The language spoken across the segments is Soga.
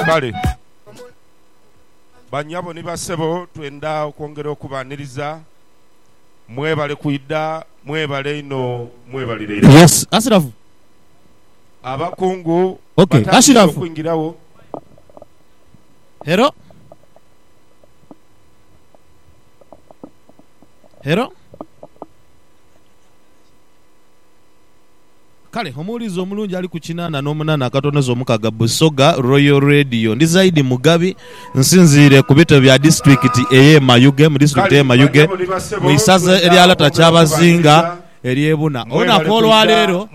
Kale, banyabo ni basebo, twendha okwongera okubaaniriza. Mwebale kwidha. Mwebale inho. Mwebalire inho. Abakungu batandise okwingiragho. Kale omuwulizi omulungi ali ku kinaana n'omunaana akatonoza omukaga Busoga Royal Radio. Ndi Zaidi Mugabi, nsinziire ku bitebe bya disitulikiti ey'e Mayuge mu disitulikiti ey'e Mayuge mu isaza erya Lata Kyabazinga ery'e Buna. Olunaku olwaleero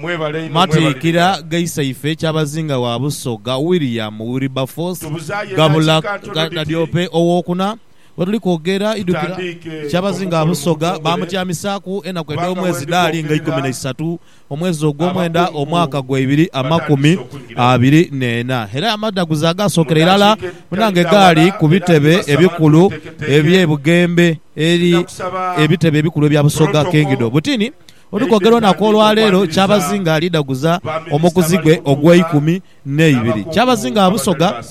matiikira ghaisaife Kyabazinga wa Busoga William Wilberforce Gabula Kadyope ow'okuna. wetuli kwogera idhukira kyabazinga Busoga baamutyamisaaku enaku edh'omwezi dhaali nga ikumi na isatu omwezi ogw'omwenda omwaka gwa ibiri amakumi abiri n'ena era amadhaguzi agaasookera irala munange gaali ku bitebe ebikulu eby'e Bugembe eri ebitebe ebikulu ebya Busoga Kingdom. Butini wetuli kwogera olunaku olwaleero kyabazinga alidhaguza omukuzi gwe ogw'eikumi n'eibiri. Kyabazinga gha Busoga,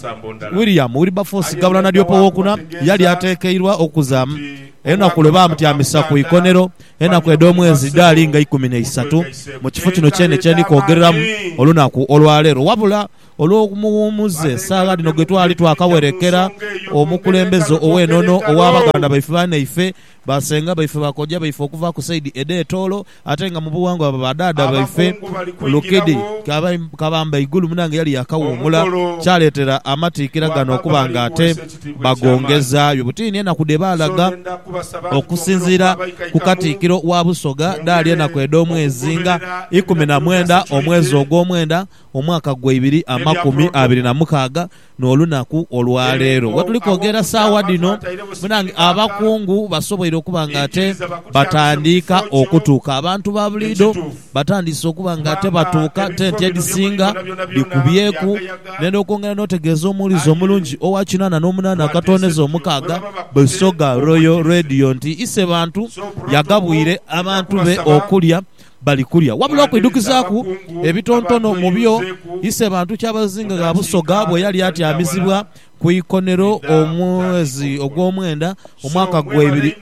William Wilberforce Gabula Nadiope Owokuna yali atekeirwa okuzaamu enaku lwe baamutyamisa ku ikonero enaku edh'omwezi dhaali nga ikumi n'eisatu mu kifo kino kyene kye ndi kwogereramu olunaku olwaleero. Wabula olw'omuwumuze saagha dhino gwe twali twakawerekera omukulembeze ow'enono owa baganda baife banaife, Basenga baife, bakojja baife okuva ku saidi edh'etoolo ate nga mu bughangwa baba ba dhaadha baife. Abakungu bali Lukidi kwingiragho. Kabamba Igulu munange yali yaakawuumula, Omukolo kyaleetera amatikkira gano gw'Abamu okuba nga ate Abalimuweesa Ekitiibwa eky'Amaani. bagongezaayo butiini enaku dhe baalaga. Nsonda ndha kubasa bantu bombiriri Okusinziira okuva abaika ku eikamu Katikkiro wa Busoga, dhaali bongere enaku edh'omwezi nga okugoberera ikumi na ebiragiro bya mwenda, omwezi Securite. ogw'omwenda, omwaka gwa ibiri amakumi Eby'aprotocol. abiri na mukaaga, N'olunaku olwa leero we tuli kwogera saagha dhino, munange, abakungu basoboire okuba ng'ate batandiika okutuuka. Abantu ba buliidho batandiise okuba ng'ate batuuka, tenti edhisinga dhikubyeku. Ndhenda okwongera n'otegeeza omuwulize omulungi owa kinaana n'omunaana akatooneza omukaaga, Busoga Royal Radio nti Isebantu yagabwire abantu be okulya Bali kulya wabula okwidhukizaaku ebitontono mu byo Isebantu Kyabazinga gha Busoga bwe yali atyamizibwa ku ikonero omwezi ogwomwenda omwaka gwa ibiri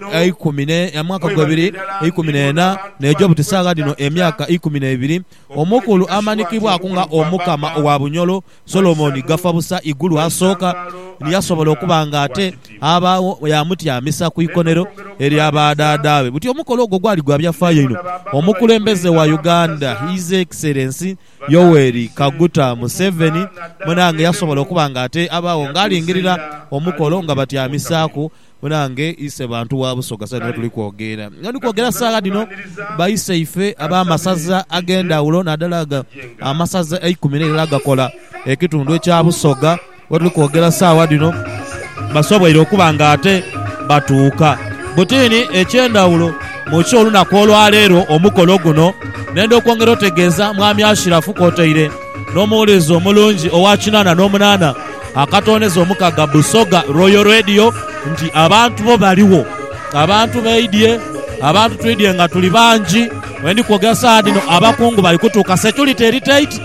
eikumi n'ena n'eja obuti saagha dhino emyaka eikumi n'ebiri, Omukulu amanikibwaku nga Omukama owa Bunyolo. Solomoni gafa busa igulu asooka ni yasobola okuba nga ate abaagho yaamutyamisa ku ikonero elya badhaadhaabe. Buti omukolo ogwo gwali gwa byafaayo inho. Omukulembeze wa Uganda His Excellency Yoweri Kaguta Museveni munaange yasobola okuba nga ate abaagho ng'alingirira omukolo nga batyamisaaku Munange ise bantu wa Busoga saidi mwe tuli kwogera nga ndi kwogera saagha dhino, baiseife ab'amasaza ag'endhawulo naadala ago amasaza eikumi n'eilara agakola ekitundu ekya Busoga we tuli kwogera saagha dhino basoboire okuba nga ate batuuka. Buti ni eky'endhawulo mu ky'olunaku olwaleero omukolo guno, nenda okwongera otegeeza Mwami Ashiraf kwotaire. N'omuwulizi omulungi owa kinaana n'omunaana akatooneza omukaga Busoga Royal Radio nti abantu bo baligho. Abantu baidhye, abantu twidhye nga tuli bangi. We ndi kwogera saagha dhino abakungu bali kutuuka. Security eri tight,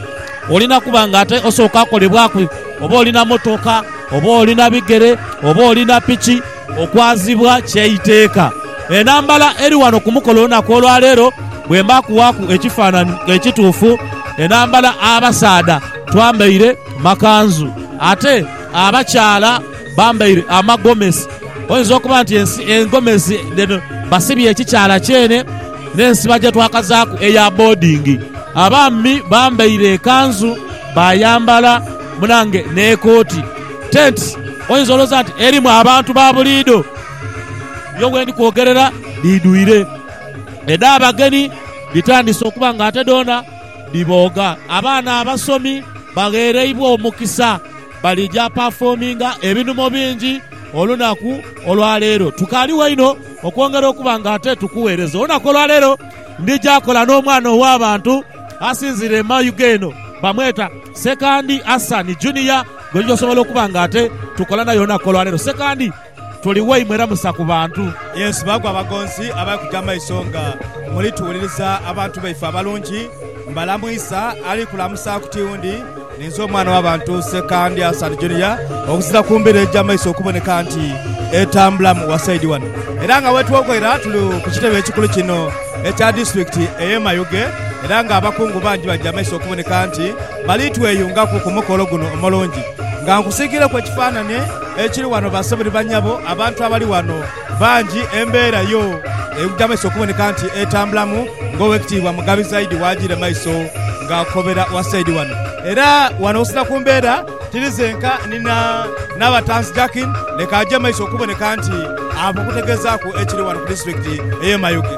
olina kuba nga ate osooka kolebwaku oba oli na motoka, oba oli na bigere, oba oli na piki. Okwazibwa ky'eiteeka. Enhambala eri wano ku mukolo olunaku olwa leero bwemba kuwaaku ekifaananhi ekituufu, enhambala abasaadha twambaire makanzu ate abakyala bambaire amagomesi. Oyinza okuba nti ensi engomesi dhino basibye ekikyala kyene n'ensiba gye twakazaaku eya boodingi. Abaami bambaire ekanzu baayambala munange n'ekooti. Tents oyinza olowooza nti erimu abantu ba buliidho, yo wendi kwogerera dhidhwire. Edh'abagenhi dhitandise okuba nga ate dhoona dhibooga. Abaana abasomi bagheereibwa omukisa balija pafoominga ebinhumo bingi olunaku olwa leero. Tukaaliwo inho okwongera okuba nga ate tukuweereza. Olunaku olwa leero ndija kola n'omwana ow'abantu asinziire e Mayuge eno, bamweta Sekandi Hassan Junior. Gwe gy'osobola okuba nga ate tukola naye olunaku olwaleero. Sekandi tuli waimwe era musa ku bantu. Yes, baku abagonzi abali kuja mumaiso nga muli tuwuliriza abantu baife abalungi. Mbalamwisa ali kulamusa ku tiundi. Ninze omwana wa bantu Sekandi Hassan Junior okuzira ku mbiro egya maiso okuboneka nti etambulamu wasaidi wano. Era nga wetwogoera tuli ku kitebe ekikulu kino ekya disiturikiti eye Mayuge era nga abakungu bangi baja maiso okuboneka nti. Balitweyungaku ku mukolo guno omulungi nga nkusiikiileku ekifaananie ekiri wano basabe ni banyabo abantu abali wano bangi embeera yo egyameisa okuboneka nti etambulamu ng'Owekitiibwa Mugabi Zaidi w'ajiire maiso ng'akobera wasaidi wano. Era wano osinziira ku mbeera tiri zenka ni na Nabatanzi Jakin leka aje maiso okuboneka nti aba okutegezaaku ekiri wano ku disitulikiti ey'e Mayuge.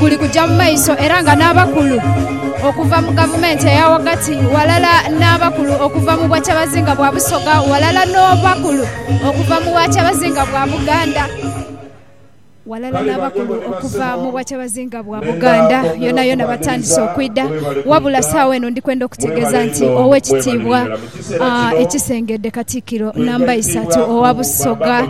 guli kujja mu maiso era nga n'abakulu okuva mu gavumenti eya ghagati ghalala n'abakulu okuva mu bwakyabazinga bwa Busoga ghalala n'abakulu okuva mu bwakyabazinga bwa Buganda ghalala n'abakulu okuva mu bwakyabazinga bwa Buganda yonayona batandise okwidha wabula saagha eno ndi kwenda okutegeeza nti Owekitiibwa ekisengedde Katikkiro namba isatu owa Busoga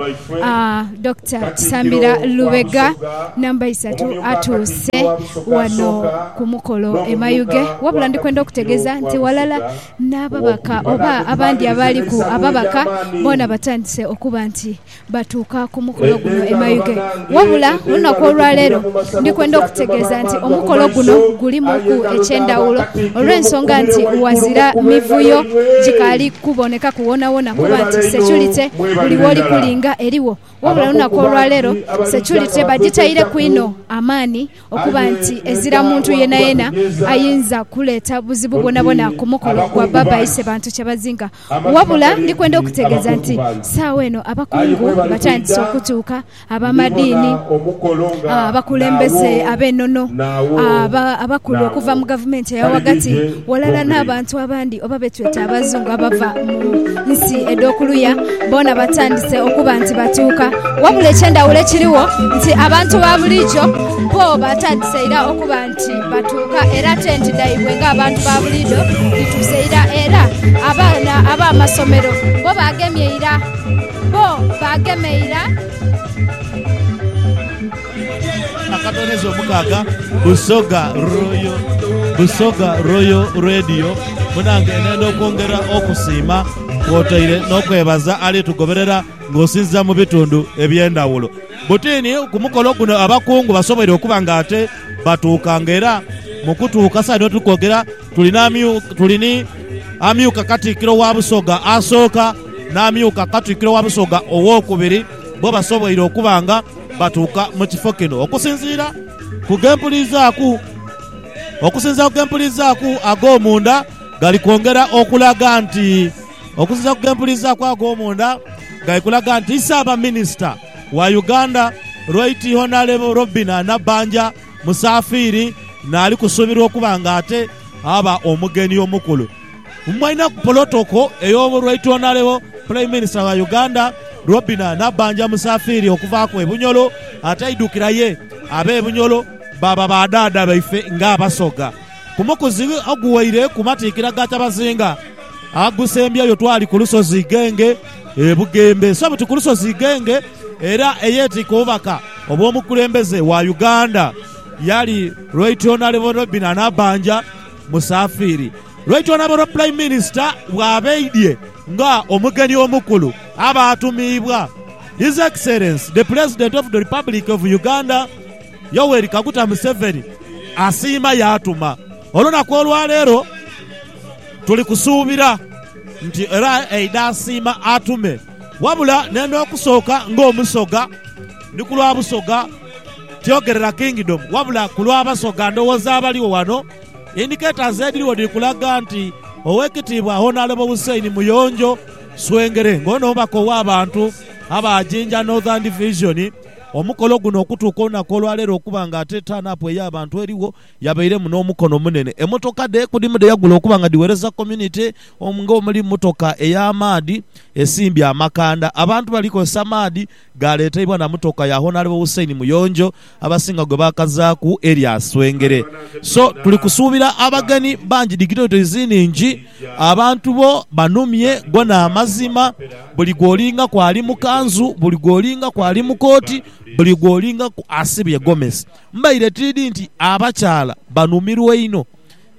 Dokita Kisambira Lubega namba isatu atuuse wano ku mukolo e Mayuge wabula ndi kwenda okutegeza nti walala n'ababaka oba abandi abaaliku ababaka boona batandise okuba nti batuuka ku mukolo guno e Mayuge. Wabula olunaku olwaleero ndi kwenda okutegeeza nti omukolo guno gulimuku eky'endhawulo olw'ensonga nti ghazira mivuyo gikaali kubonekaku wonawona kuba nti securite buli w'oli kulinga erigho wabula olunaku olwaleero securite bagitaireku inho amaani okuba nti ezira muntu yenayena ayinza kuleeta buzibu bwonabwona ku mukolo gwa Baba Ise bantu kyebazinga. Wabula ndi kwenda okutegeeza nti saagho eno abakungu batandise okutuuka, abamadiini, abakulembeze ab'enono, abakulu okuva mu gavumenti eya ghagati, ghalala n'abantu abandi. oba be tweta Abazungu abava mu nsi edh'okuluya, boona batandise okuba nti batuuka. Wabula eky'endhawulo ekirigho nti abantu ba bulijo bo batandise ira okuba nti batuuka era tenti dhaibwe ng'abantu ba buliidho dhituuse ira. Era abaana ab'amasomero bo baagemye ira, bo baagema ira. Akatonezo omukaaga Busoga Royal Busoga Royal Radio munange nenda okwongera okusiima kwotaire n'okwebaza ali tugoberera ng'osinziira mu bitundu eby'endhawulo. Butiini ku mukolo guno abakungu basoboire okuba nga ate batuuka nga era mu kutuuka saidi eno tuli kwogera tuli n'amyuka tuli ni amyuka Katikkiro wa Busoga asooka n'amyuka Katikkiro wa Busoga owookubiri bbo basoboire okuba nga Batuuka mu kifo kino okusinziira ku gempulizaaku okusinziira ku gempulizaaku ag'omunda gali kwongera okulaga nti okusinziira ku gempulizaaku ag'omunda gali kulaga nti Ssaabaminisita wa Uganda Right Honalebo Robinah Nabbanja Musafiiri naali kusuubirwa okuba nga ate aba omugenyi omukulu. Mwainaku polotoko ey'omu Lwaitwonaleo Prime Minister wa Uganda Robinah Nabbanja Musafiri okuvaaku e Bunyolo ataidhukira ye ab'e Bunyolo baaba ba dhaadha baife nga Abasoga. Ku mukuzi oguwaire ku matikkira ga Kyabazinga agusembyeyo twali ku lusozi Igenge e Bugembe. So buti ku lusozi Igenge era eyeetikka obubaka obw'omukulembeze wa Uganda yali Lwaitwonaleo Robinah Nabbanja. Musafiri. Lwaitwala olwa Prime Minister bw'abaidye nga omugeni omukulu, abaatumiibwa His Excellency the President of the Republic of Uganda, Yoweri Kaguta Museveni, asiima yaatuma. Olunaku olwaleero tuli kusuubira nti era aidha asiima atume wabula n'endha okusooka ng'Omusoga ni ku lwa Busoga, Tyogerera Kingdom wabula ku lwa Basoga ndhoghoza abaligho ghano, indicators edhirigho dhiri kulaga nti Owekitiibwa Honourable Hussein Muyonjo Swengere nga ono mubaka ow'abantu aba Jinja Northern Division omukolo guno okutuuka olunaku olwaleero okuba nga ate turn up ey'abantu erigho yabairemu n'omukono omunene. Emotoka dhe kudhimu dheyagula okuba nga dhiwereza community nga omuli motoka ey'amaadhi esimbye amakanda abantu bali kozesa maadhi. Gaaleeteibwa na motoka ya Honourable Hussein Muyonjo abasinga gwe baakazaaku erya Swengere. So tuli kusuubira abagenhi bangi dignitaries nhingi. Abantu bo banhumye, go n'amazima. Buli gw'olingaku ali mu kanzu, buli gw'olingaku ali mu kooti, buli gw'olingaku asibye gomesi. Mbaire tiidhi nti abakyala banhumirwa inho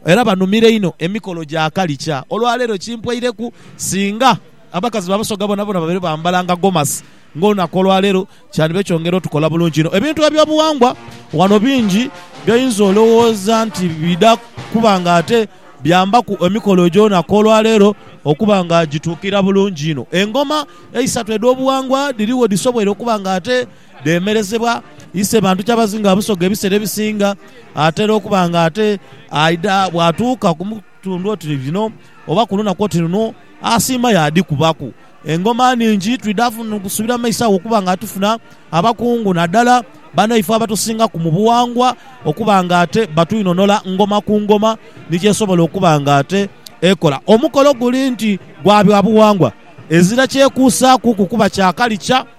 era banhumira inho emikolo gya kalikya. Olwaleero kimpweireku singa. Abakazi ba Busoga boonaboona babeire bambalanga gomasi ng'olunaku olwaleero kyandibaire kyongera otukola bulungi inho. Ebintu eby'obuwangwa ghano bingi by'oyinza olowooza nti bidha kuba nga ate byambaku emikolo egy'olunaku olwaleero okuba nga gituukira bulungi inho. Engoma eisatu edh'obuwangwa dhirigho dhisoboire okuba nga ate dhemerezebwa ise bantu Kyabazinga Busoga ebiseera ebisinga atera okuba nga ate aidha bwatuuka ku... Tundhu oti lino oba ku lunaku oti luno, asiima yaadhikubaku. Engoma nhingi twidha kusubira mu maiso agho okuba nga tufuna abakungu naddala banaifo abatusingaku mu bughangwa okuba nga ate batwinhonhola ngoma ku ngoma ni kyesobola okuba nga ate ekola. Omukolo guli nti gwa byabughangwa, ezira kyekuusaakuku kuba kya kalica.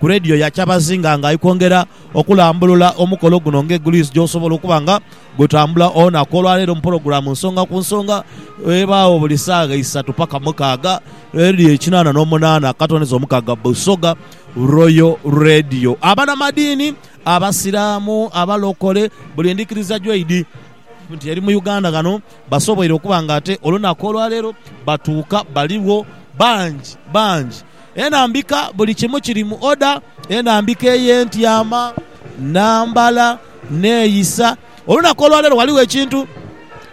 ku leediyo ya Kyabazinga nga ali kwongera okulambulula omukolo guno ng'eguliisi gy'osobola okuba nga gutambula olunaku olwaleero mu pulogulaamu Nsonga ku Nsonga ebaawo buli saagha isatu paka mukaaga, leediyo ekinaana n'omunaana akatondezo omukaaga Busoga Royal Radio. Abanamadiini, Abasiraamu, Abalokole buli ndhikiriza gyoidhi nti eri mu Uganda ghano basoboire okuba nga ate olunaku olwaleero batuuka baligho bangi bangi. Enhambika, buli kimu kiri mu oda, enhambika ey'entyama, nambala, neeyisa. Olunaku olwaleero ghaligho ekintu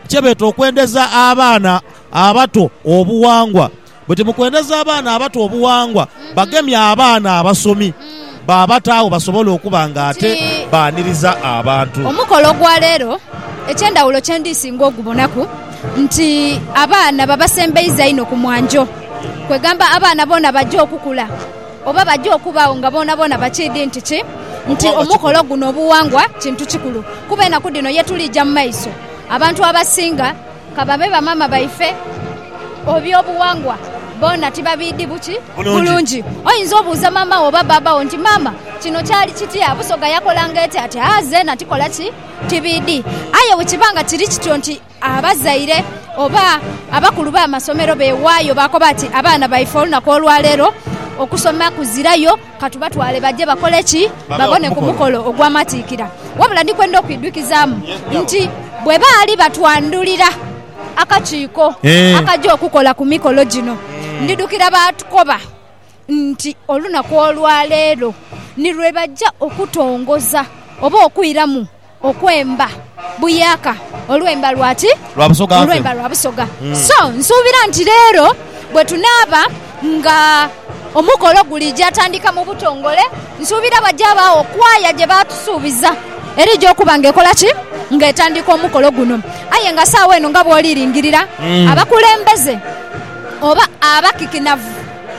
kyebeeta okwendeza abaana abato obuwangwa. Buti mukwendeza abaana abato obuwangwa, bagemye abaana abasomi. baabataagho basobole okuba nga ate baaniriza abantu. Omukolo gwa leero eky'endhawulo kye ndi singa ogubonaku nti abaana babasembeiza inho ku mwanjo. Kwegamba abaana boona baja okukula oba baja okubaagho nga boonaboona bakiidhi nti ki, nti omukolo guno obughangwa kintu kikulu. Kuba enaku dhino ye tuliija mu maiso, abantu abasinga Ka babe bamaama baife ob'eby'obughangwa boona tibabiidhi buki bulungi. Oyinza obuuza maama wo oba bbaabba wo nti, Maama, kino kyali kitya? Busoga yakolanga eti ati? Aa, zeena tikola ki? Tibiidhi. Aye bwe kiba nga kiri kityo nti abazaire oba abakulu b'amasomero beewaayo baakoba ati, Abaana baife olunaku olwa leero okusoma kuzirayo, Ka tubatwale baje bakole ki? Babone ku mukolo ogw'amatiikira. Wabula ndi kwenda okwidhukizaamu nti bwe baali batwandhulira akakiiko akaja okukola ku mikolo gino, ndidhukira baatukoba nti olunaku olwa leero ni lwe baja okutongoza oba okwiramu Okwemba buyaaka olwemba lwa ki? Olwemba lwa Busoga. So, nsuubira nti leero bwe tunaaba nga omukolo gulija tandika mu butongole, nsuubira waja wabaagho kwaya gye baatusuubiza erija okuba nga ekola ki? Nga etandika omukolo guno. Aye nga saagho eno nga bw'oli lingirira, abakulembeze oba abakikinavu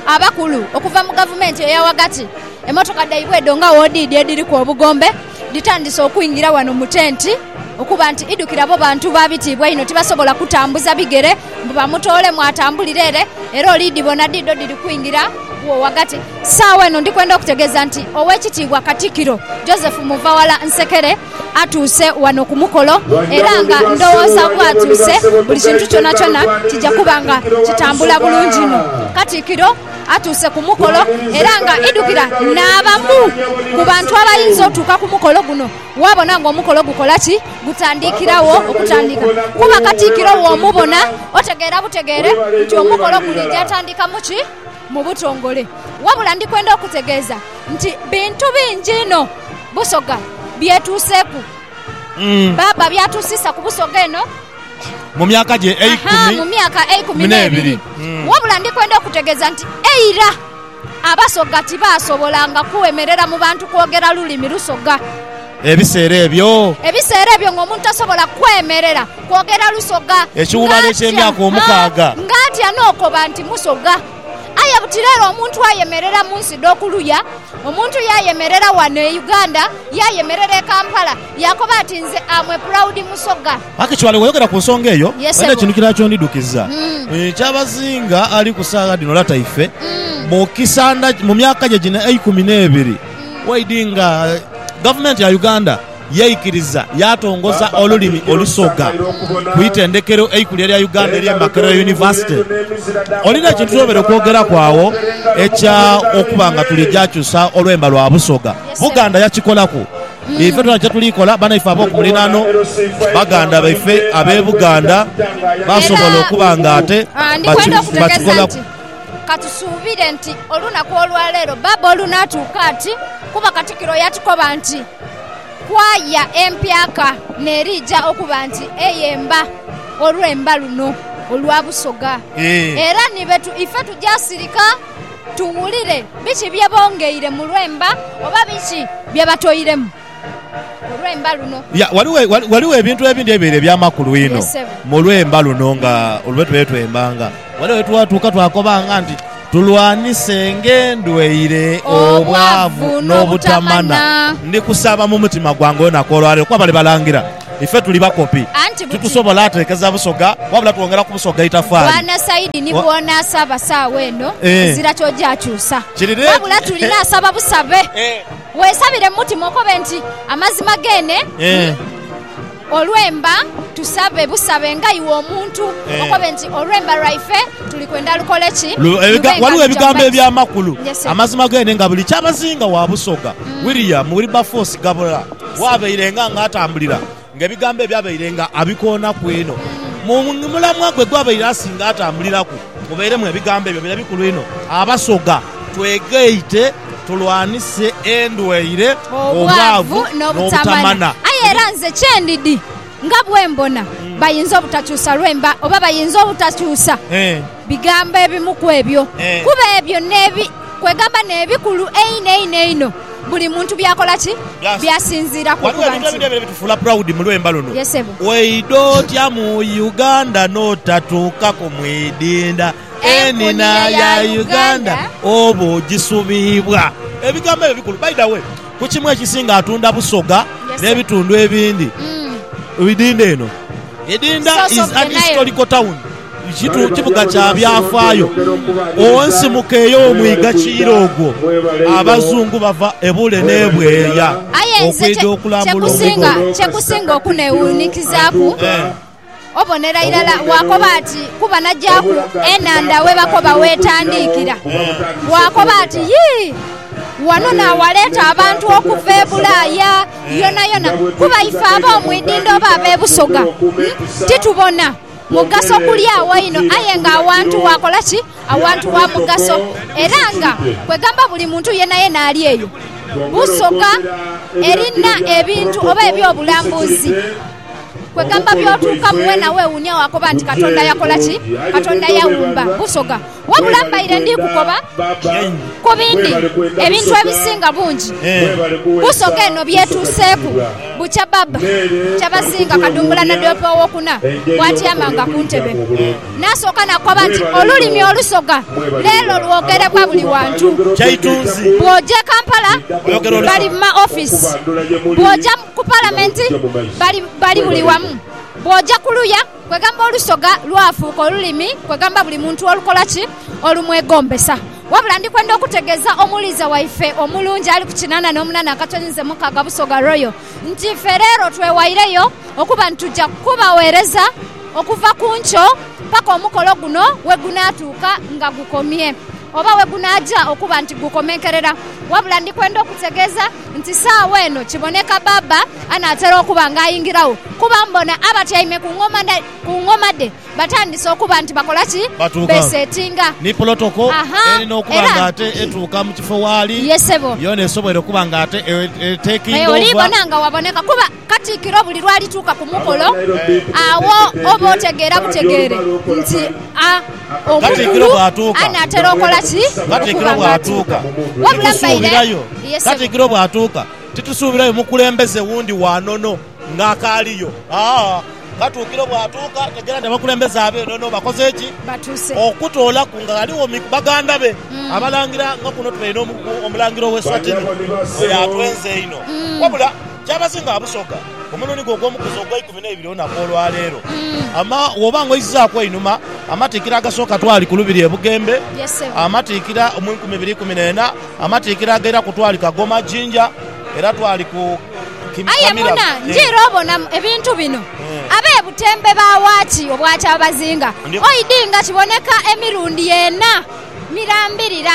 abakulu okuva mu gavumenti eya ghagati, emotoka dhaibwe edho nga w'odhiidhi edhiriku obugombe, Nditandise okwingira wano mu tenti okuba nti idhukira bo bantu ba bitiibwa einho, tibasobola kutambuza bigere mbu bamutoolemu atambulire ere, era olidhibona dhidho dhiri kwingira wo ghagati. Saagho eno ndi kwenda okutegeeza nti Owekitiibwa Katikiro Joseph Muvawala Nsekere atuuse wano ku mukolo era nga ndhowooza bwatuuse buli kintu kyonakyona kija kuba nga kitambula bulungi inho. Katikiro. atuuse ku mukolo era nga idhukira n'abamu ku bantu abayinza otuuka ku mukolo guno waabona nga omukolo gukola ki? Gutandikiragho okutandika kuba Katikkiro w'omubona otegeera butegeere nti omukolo guliija atandika mu ki? Mu butongole. Wabula ndi kwenda okutegeeza nti bintu bingi inho Busoga byetuuseeku. Bbaabba by'atuusiisa ku Busoga eno. mu myaka gye eikumi mu myaka eikumi n'ebiri. Wabula ndi kwenda okukutegeeza nti eira Abasoga tibaasobolanga kwemerera mu bantu kwogera lulimi Lusoga. Ebiseera ebyo. Ebiseera ebyo ng'omuntu tasobola kwemerera kwogera Lusoga. Ekiwuubaalo eky'emyaka omukaaga. Ng'atya n'okoba nti Musoga. Aye buti leero omuntu ayemerera mu nsi dh'okuluya, omuntu yaayemerera wano e Uganda, yaayemerera e Kampala, Yaakoba ati, Nze am a proud Musoga. Akicwale wayogera ku nsonga eyo, balina ekintu kirala ky'ondidhukiza. Kyabazinga ali ku saagha dhino lata ife, mu kisandha, mu myaka gye gino eikumi n'ebiri waidhi nga Gavumenti ya Uganda yaikiriza yaatongoza olulimi Olusoga ku itendekero eikulu erya Uganda erye Makerere University. Olina ekintu ky'obaire okwogeraku agho ekya okuba nga tuli gyakyusa olwemba lwa Busoga? Buganda yakikolaku? Ife tulina kye tuli kola banaife ab'oku muliraano, baganda baife ab'e Buganda basobola okuba nga ate bakikolaku. Ka tusuubire nti olunaku olwa leero Baaba olunaatuuka ati, kuba Katikiro yatukoba nti kwaaya empyaka n'eriija okuba nti eyemba olwemba luno olwa Busoga. Era ni bwe ife tugya sirika. Tuwulire biki bye bongeire mu lwemba oba biki bye batoiremu mu lwemba luno. Ya, ghaligho, ghaligho ebintu ebindi ebibaire eby'amakulu inho mu lwemba luno nga lwe tubaire twembanga. Ghaligho ye twatuuka twakobanga nti, Tulwanisenga endwaire, obwavu, n'obutamana. Ndi kusaba mu mutima gwange olunaku olwa leero, kuba bali balangira. Ife tuli bakopi, Anti buti. titusobola ateekeza Busoga wabula twongera ku Busoga itafaali. Bwana Saidi ni Wa- bw'onaasaba saawa eno, Eh. ezira ky'ogyakyusa. Kiri reedi. Wabula tuli naasaba busabe. Eh. Weesabire mu mutima okobe nti amazima geene Eh. olwemba tusabe busabe nga iwe omuntu Eh. okobe nti olwemba lwaife tuli kwenda lukole ki? Lu- ebiga- Lube nga waliwo luja ebigambo mu maiso. eby'amakulu Yes, sir. amazima geene nga buli kyabazinga wa Busoga William Wilberforce Gabula Waabairenga ng'atambulira ng'ebigambo ebyo abairenga abikoonaku inho. Mu mulamwa gwe gw'abaire asinga atambuliraku mubeiremu ebigambo ebyo bire bikulu inho, Abasoga twegaite tulwanise endwaire, obwavu, n'obutamana. Aye era nze kye ndidhi nga bwe mbona bayinza obutakyusa lwemba oba bayinza obutakyusa bigambo ebimu ku ebyo, kuba ebyo n'ebi. Kwegamba n'ebikulu einho einho einho buli muntu by'akola ki? By'asinziiraku okuba nti. Ghaligho ebintu ebideebi ebitufuula proud mu lwemba luno. Yes sebo. Waidha otya mu Uganda n'otatuukaku mu idinda? Enina ya Uganda oba ogisubibwa? Ebigambo ebyo bikulu. By the way, ku kimu ekisinga atunda Busoga n'ebitundu ebindi idinda eno. Idinda is an historical town. Kitu kibuga kya byafaayo. Onsimuka eyo omwiga kiira ogwo. Abazungu bava ebule n'ebweeya Aye nze okwidha okulambula omwiga ogwo. kye kusinga okunewuunikizaaku, obonera irala waakoba ati kuba nagyaaku enhandha we bakoba weetandiikira, waakoba ati yii, wano naawaleeta abantu okuva e Bulaaya yonayona kuba ife ab'omu idhindho oba ab'e Busoga titubona. Mugaso kulya agho inho aye nga awantu wakola ki? Awantu wa mugaso era nga kwegamba buli muntu yenayena ali eyo busoga erina ebintu oba eby'obulambuzi kwegamba by'otuukamu wena wewuunia wakoba nti Katonda yakola ki? Katonda yawumba busoga. Wabula mbaire ndi kukoba ku bindi ebintu ebisinga bungi ku nsoga eno by'etuuseeku. Bukya Bab. Kyabazinga Kadumbula Nadoope Owokuna bw'atyamanga ku ntebe, naasooka nakoba nti, Olulimi Olusoga leero lwogerebwa buli wantu. Bw'oja e Kampala bali mu ma ofiisi, bw'oja ku Palamenti bali buli wamu, bw'oja ku luya Kwegamba olusoga lwafuuka olulimi, kwegamba buli muntu olukola ki? Olumwegombesa. Wabula ndi kwenda okutegeeza omuwuliza waife omulungi ali ku kinana n'omunana akatoni nze Mukaaga Busoga Royal nti ife leero twewaireyo okuba nti tuja kubaweereza okuva ku nkyo paka omukolo guno wegunaatuuka nga gukomye oba wegunaaja okuba nti gukomenkerera. Wabula ndi kwenda okutegeeza. Nti saagho eno kiboneka Baaba anaatera okuba nga ayingiragho, kuba mbona abatyaime ku ngoma dhe, ku ngoma dhe batandise okuba nti bakola ki? Batuuka. Besetinga. Ni pulotoko Aha, erina okuba era. nga ate etuuka mu kifo waali Ye, ssebo. yoona esobwoire okuba nga ate e, e, E, taking over. olibona nga waboneka kuba. Katikkiro buli lw'alituuka ku mukolo, agho oba otegeera butegeere nti a omukulu anaatera okola ki? Okuba nga atuuka. Wabula mbaire, ye ssebo. Katikkiro bw'atuuka, titusuubirayo mukulembeze wundi wa nono ng'akaaliyo. Aa Katuukiro bw'atuuka ategeera nti abakulembeze ab'enono bakoze ki? Batuuse. Okutoolaku nga ghaligho mi baganda be Abalangira nga kuno tulaire n'omu Omulangira ow'e Swatini oyo atwenza einho. Wabula Kyabazinga abusoga ku mulundi gwe ogw'omukuzi ogw'eikumi n'eibiri olunaku olwa leero. Ama, Bw'oba nga oizaaku einhuma, amatiikira agasooka twali ku lubiri e Bugembe, amatiikira mu nkumi ibiri ikumi n'ena, amatiikira agairaku twali Kagoma, Jinja, era twali ku Aye muna, njira obona ebintu bino, ab'e Butembe baawa ki obwa Kyabazinga? Oidhi nga kiboneka emirundi ena mirambirira.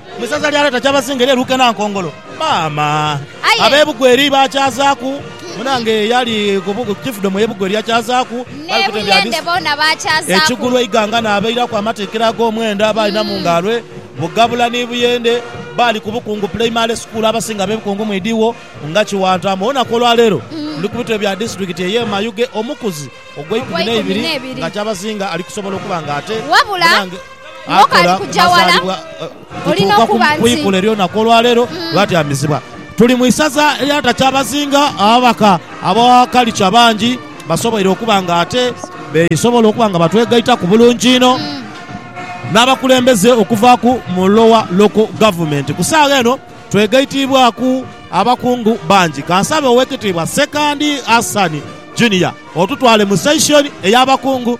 Mu isaza lya Lweta Kyabazinga erye Luke Nankongolo, maama Aye. abe Bugweri baakyazaaku, munange eyali ku bu- ku Chiefdom eye Bugweri yakyazaaku, Ni bali kutendera Buyende disi- boona baakyazaaku. Ekigulu eighanga n'abairaku amatikira ag'omwenda baalina mu ngaalwe, Bugabula ni Buyende baali ku Bukungu Puleimale Sukuulu abasinga abe Bukungu mwidhiwo nga Kiwantaamu. Olunaku olwaleero ndi ku bitebe bya disitulikiti eye Mayuge omukuzi ogw'eikumi Ogw'eikumi n'eibiri n'ebiri. nga Kyabazinga ali kusobola okuba nga ate Wabula, munange- akola ku mazaalibwa kutuuka ku kwikula ery'olunaku olwaleero lwatyamizibwa. Tuli mu isaza erya Takyabazinga, ababaka aba Khalch abangi basoboire okuba nga ate besobola okuba nga batwegaitaku bulungi inho n'abakulembeze okuvaaku mu Lower Local Government. Ku saagha eno twegaitiibwaku abakungu bangi. Kansabe Owekitiibwa Ssekandi Hassan Junior otutwale mu section ey'abakungu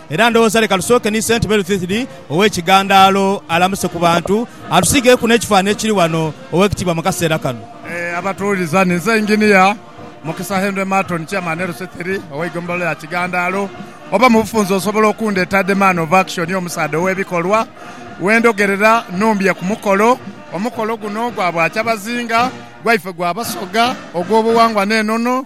Era ndowooza leka tusooke ni Saint Berthilde ow'ekigandaalo alamuse ku bantu, atusiigeeku n'ekifaananhi ekiri wano, Ow'ekitiibwa, mu kaseera kano. Ee, abatuwuliza, ninze Engineer Mukisa Henry Marton, Chairman LC Three ow'eigombolola ya Kigandaalo. Oba mu bufunze osobola okundheeta The Man of Action, Omusaadha ow'ebikolwa. We ndhogerera nhumbye ku mukolo. Omukolo guno gwa bwa kyabazinga, gwaife gwa Basoga, ogw'obuwangwa n'enono.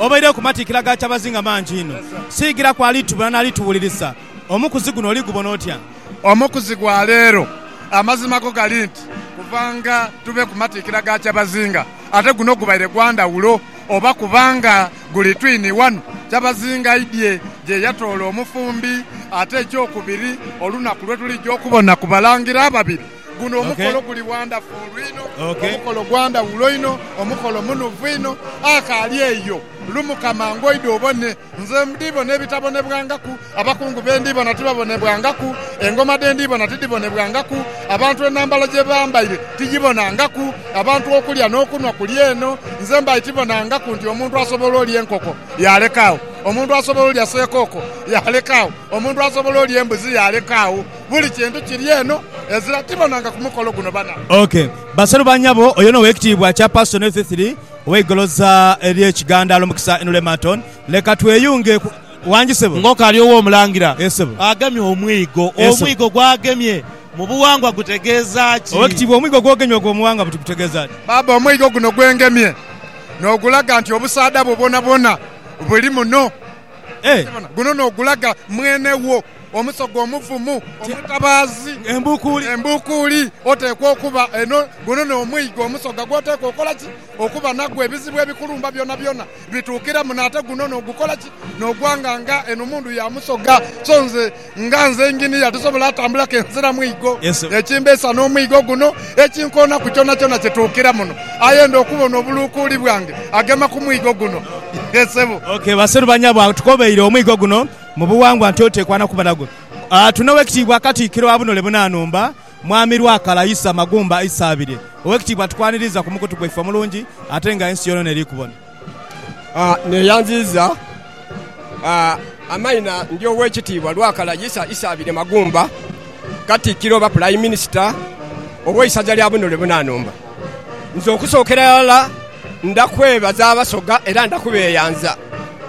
Obaireku matiikira ga kyabazinga mangi inho. Siigiraku alitubona n'alituwulirisa. Omukuzi guno oli gubona otya? Omukuzi gwa leero. Amazima go gali nti kuva nga tube ku matiikira ga kyabazinga ate guno gubaire gwa ndhawulo oba kubanga guli twini wano kyabazinga aidhie gye yatoola omufumbi ate ekyokubiri olunaku lwe tuliidha okubona ku Balangira ababiri Guno omukolo guli wandafulu inho, omukolo gwa ndhawulo inho, omukolo munuufu inho. Akaali eyo, lumuka mangu oidhe obone. Nze ndhi bona ebitabonebwangaku, abakungu be ndhi bona tibabonebwangaku, engoma dhe ndhi bona tidhibonebwangaku, abantu enhambala gye bambaire tigibonangaku, abantu okulya n'okunhwa kuli eno. Nze mbaire tibonangaku nti omuntu asobola olya enkoko yaaleka agho, omuntu asobola olya seekooko yaaleka agho, omuntu asobola olya embuzi yaaleka agho. buli kintu kiri eno ezira tibonanga ku mukolo guno bana. Ok. Basalu ba nyabo, oyo n'Owekitiibwa Chairperson Ethie Thiri ow'eigoloza erye Kigandaalo Mukisa Inule Marton, leka tweyunge ku. Wangi sebo. Ng'okali ow'Omulangira Yes sebo. agemye omwigo, Yes sebo. omwigo gw'agemye mu buwangwa gutegeeza ki? Owekitiibwa omwigo gw'ogemye ogwo muwangwa buti gutegeeza ki? Baaba omwigo guno gwengemye n'ogulaga nti obusaadha bwo bwonabwona buli muno. Eh. Okibona? Guno n'ogulaga mwene wo. omusoga omuvumu, omutabaazi, embuukuuli, oteekwa okuba eno. Guno n'omwigo omusoga gw'oteekwa okola ki? Okuba nagwo. Ebizibu ebikulumba byonabyona bituukira muno. Ate guno n'ogukola ki? N'ogwanga nga eno mundu ya musoga. So nze nga nze Engineer tisobola atambula kenzira mwigo. Ekimbeesa n'omwigo guno ekinkoona ku kyonakyona kye tuukira muno. Aye enda okubona obuluukuuli bwange agema ku mwigo guno. Yee, ssebo. Ok, baseru banyabwangu tukobeire omwigo guno. Mu buwangwa nti oteekwa na kuba nago. Tuna Owekitiibwa Katikkiro wa Bunole Bunanumba, Mwami Lwakala Isa Magumba Isabirye. Owekitiibwa tukwaniriiza ku mukutu gwaife omulungi ate nga ensi yonona eri kubona. Neyanziiza amaina ndi Owekitiibwa Lwakala Isa Isabirye Magumba, Katikkiro oba Pulayiminista ow'eisaza lya Bunole Bunanumba. Nze okusookera ghalala ndha kwebaza Abasoga era ndha kubeeyanza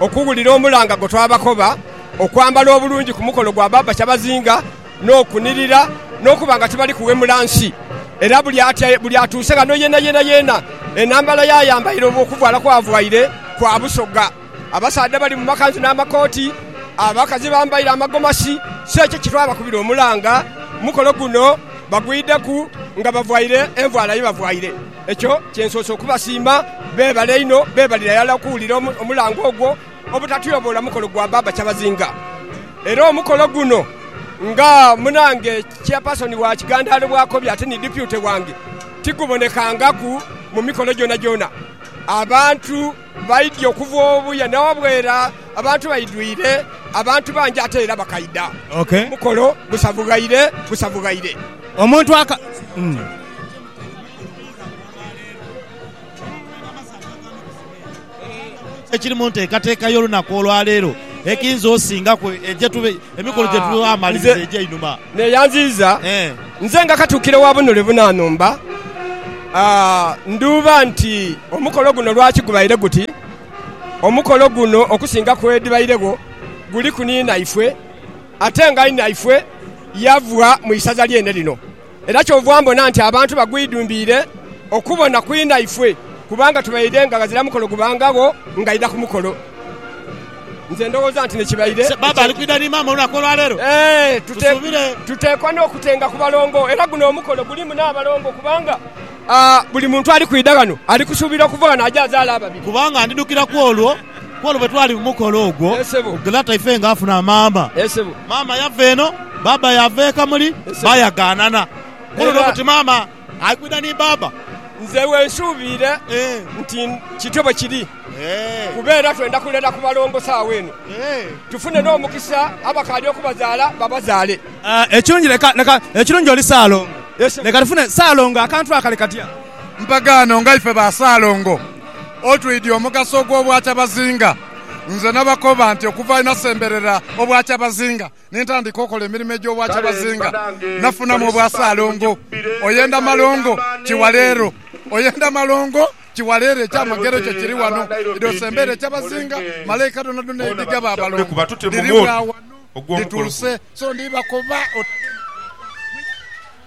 okuwulira omulanga gwe twabakoba, okwambala obulungi ku mukolo gwa Baaba Kyabazinga n'okunirira n'okuba nga tibali kuwemula nsi. Era buli atuuse ghano yenayeena yeena enhambala y'ayambaire oba okuvaala kw'avaire kwa Busoga. Abasaadha bali mu makanzu n'amakooti, abakazi bambaire amagomasi, si ekyo kitwabakubira omulanga. Omukolo guno bagwideku nga bavaire envaala ye bavaire. Ekyo kye nsoose okubasiima. Beebale inho, beebalire ghala okuwulira omulanga ogwo obutatyoboola mukolo gwa Baaba Kyabazinga. Era omukolo guno nga munange Chairperson wa Kigandaalo bw'akobye ate ni Deputy wange, tigubonekangaku mu mikolo gyonagyona. Abantu. Baidhie okuva obuya na wabwera abantu baidhwire, abantu bangi ate era bakaidha. Omukolo gusavughaire gusavughaire. Omuntu aka. Ekiri mu nteekateeka y'olunaku olwaleero ekiyinza osingaku Emikono gye tugha amaliriza egy'einhuma. Neeyanziiza nze nga Katuukiro wa Bunule Bunanhumba, ndhuuba nti omukolo guno lwaki gubaire guti. Omukolo guno okusinga ku edhibairegho guliku ni naifwe ate nga inaifwe yava mu isaza lyene lino. Era kyova mbona nti abantu bagwidhumbiire okubona ku inaife, kubanga tubaire nga ghazira mukolo gubangagho ng'aidha ku mukolo. Nze ndowooza nti nekibaire tuteekwa n'okutenga ku balongo, era guno omukolo gulimu n'abalongo kubanga buli muntu ali kwidha ghano ali kusuubira okuva ghano aje azaale ababiri. Ku olwo bwe twali mu mukolo ogwo, Glata ife nga afuna amamba, maama yava eno, baaba yaava e Kamuli, baayagaanana. Ku olwo n'okuti maama ali kwidha ni baaba. Nze wensuubiire nti kityo bwe kiri, kuba era twenda kulera ku balongo saagho eno, tufune n'omukisa abakaali okubazaala babazaale. Ekirungi leka, leka, ekirungi oli Ssaalongo. Leka tufune Ssaalongo akantu akali katya? Mpagaano nga ife ba Ssaalongo. Otwidhi omugaso ogw'obwakyabazinga. Nze nabakoba nti okuva lwe nasemberera obwakyabazinga ni ntandika okola emirimo egy'obwakyabazinga, nafunamu obwa Ssaalongo. Oyenda Malongo Kiwaleero Oyenda Malongo Kiwaleero Ekyamagero kyo kiri wano, idhi osembeere ekyabazinga. Malaika dhonadhona edhigaba abalongo dhiri bwa wano dhituuse. So ndhi bakoba.